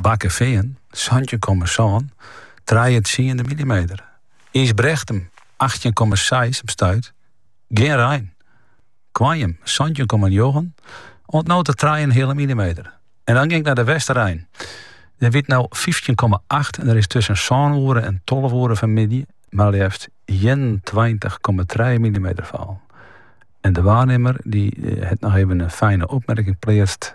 Bakkefean, santjin komma sân, trije tsiende millimeter. Ysbrechtum, achttjin komma seis op stuit, gjin rein. Koarnjum, santjin komma njoggen, oant no ta trije en in heale millimeter. En dan gean ik nei De Westereen. Dêr wie it no fyftjin komma acht en der is tusken sân oere en tolve oere fanmiddei mar leafst ienentweintich komma trije millimeter fallen. En de waarnimmer die hat noch even in fijne opmerking pleatst.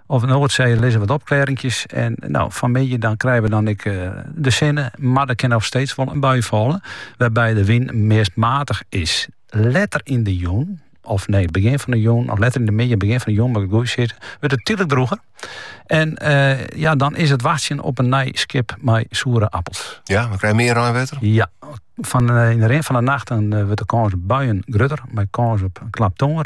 Op 'e Noardsee lizze wat opklearinkjes. En no, fanmiddei dan krije we dan ek de sinne, mar der kin noch steeds wol in bui falle, wêrby't de wyn meast matich is. Letter yn de jûn, of nee, begjin fan de jûn, of letter yn de middei, begjin fan de jûn moat ik it goed sizze, wurdt it tydlik drûger. En ja, dan is it wachtsjen op in nij skip mei soere appels. Ja, we krije mear reinwetter? Ja, fan, yn de rin fan de nacht dan wurdt de kâns op buien grutter, mei kâns op klap tonger.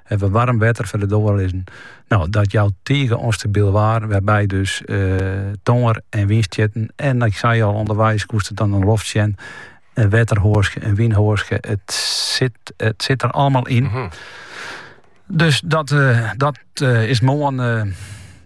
Ha we waarm wetter foar de doar lizzen. No, dat jout tige ûnstabyl waar, wêrby't dus tongear en wynstjitten. En ik sei al, ûnderweis koest it dan yn 'e loft sjen, in wetterhoaske, in wynhoaske, it sit, it sit der allemaal yn. Dus dat, dat is moarn.